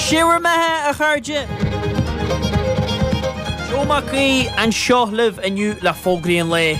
Sé bhur mbeatha, a chairde! Joe Mac Aoidh anseo libh inniu le fógraí an lae.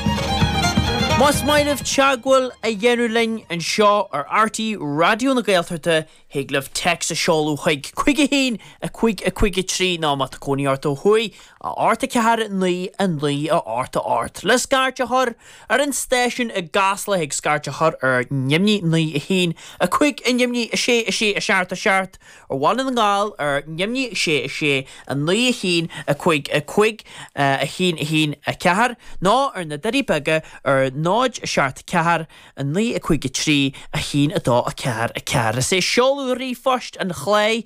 Más maith libh teagmháil a dhéanamh linn anseo ar RTÉ Raidió na Gaeltachta thig libh téacs a sheoladh chuig 51553 nó, má tá cónaí ort ó thuaidh, 8 4 9 9 8 8 le scairt a chur! ar an stáisiún i gCasla thig scairt a chur ar neamhní, naoi, a haon, a cúig, a neamhní, a sé, a sé, a seacht, a seacht, ar Bhaile na nGall ar neamhní, a sé, a sé, a naoi, a haon, a cúig, a cúig, a haon, a haon, a ceathair, nó ar na Doirí Beaga ar náid, a seacht, a ceathair, a naoi, a cúig, a trí, a haon, a dó, a ceathair, a ceathair. Is é seoladh ríomhphost an chláir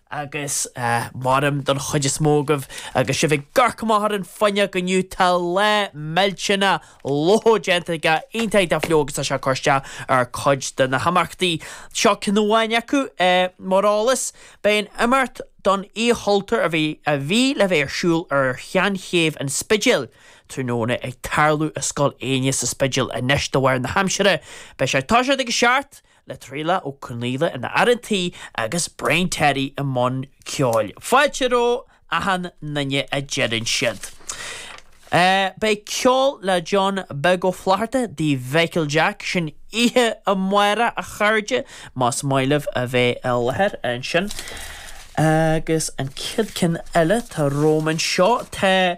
agus mairim don chuid is mó agaibh agus sibh ag amharc amach ar an fhuinneog inniu, tá lá millteanach fliuch déanta aige iontach go deo agus tá sé ag cur isteach ar chuid de na himeachtaí. Seo ceann amháin acu, mar eolas, beidh an imeacht don Oíche Chultúir a bhí le bheith ar siúl ar Sheanchéibh an Spidéil tráthnóna ag tarlú i Scoil Éinne sa Spidéal anois de bharr na haimsire. Beidh sé ag toiseacht ag a seacht le Traolach Ó Conghaile ina fhear an tí agus Brian Terry i mbun ceoil. Fáilte roimh achan nduine a deireann siad. Beidh ceol le John Beag Ó Flatharta, Tigh Mhichael Jack, sin oíche amáireach a chairde, más maith libh a bheith i láthair ansin. Agus an chéad ceann eile atá romham anseo, tá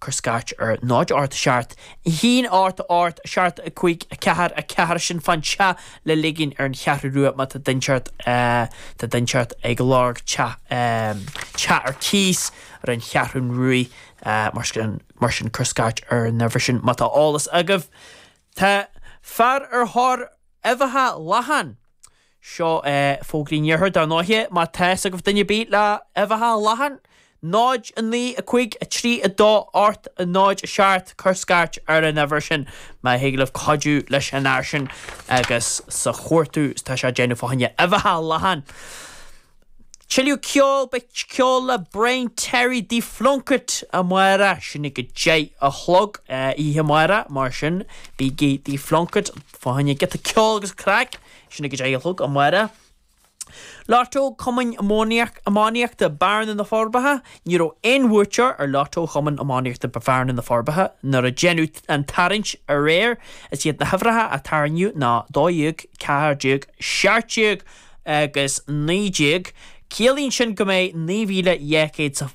cuir scairt ar 0 8 7 1 8 8 7 5 4 4 sin fán teach le ligin ar an Cheathrú Rua má tá duine inteacht tá duine inteacht ag lorg teach teach ar cíos ar an Cheathrún Ruaidh mar sin cuir scairt ar an uimhir sin má tá eolas agaibh tá fear ar thóir uibheacha lachan Seo é fógraí an Iarthair, dar ndóiche, má tá fhios agaibh duine ar bith le huibheacha lachan. 0, 9, 5, 3, 2, 8, 0, 7, Cuir scairt ar an uimhir sin má thig libh cuidiú leis an fhear sin agus sa chuartú atá sé ag déanamh fá choinne uibheacha lachan. Tuilleadh ceoil, beidh ceol le Brian Terry Tigh Phlunkett amárach, sin ag a deich a chlog oíche amárach, mar sin bígí Tigh Phlunkett fá choinne giota ceoil agus craic. Sin ag a deich a chlog amárach. Lató Cumann Iománaíochta Bearna na Forbacha, ní raibh aon bhuaiteoir ar lató Chumann Iománaíochta Bearna na Forbacha nuair a déanadh an tarraingt aréir. Is iad na huimhreacha a tarraingíodh ná, dó dhéag, ceathair déag, seacht déag agus naoi déag. Ciallaíonn sin go mbeidh naoi mhíle dhá chéad sa.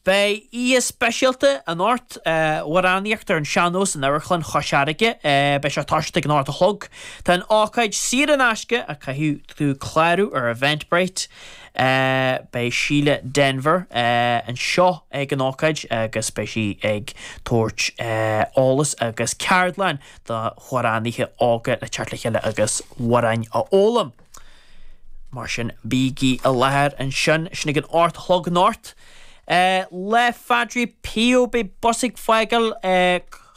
Beidh oíche speisialta anocht amhránaíocht ar an sean-nós in Amharclann Chois Fharraige. Beidh sé ag tosacht ag an ocht a chlog. Tá an ócáid saor in aisce ach caithfidh tú clárú ar Eventbrite. Beidh Síle Denvir anseo ag an ócáid agus beidh sí ag tabhairt eolas agus ceardlann d'amhránaithe óga le teacht le chéile agus amhráin a fhoghlaim. Mar sin, bígí i láthair ansin, sin ag an ocht a chlog anocht. Féile Phadre Pio. Beidh bus ag fágáil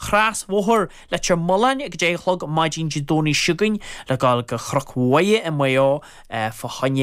Crosbhóthar Leitir Mealláin ag a deich a chlog maidin Dé Domhnaigh seo chugainn le dul go Cnoc Mhuire i Maigh Eo fá choinne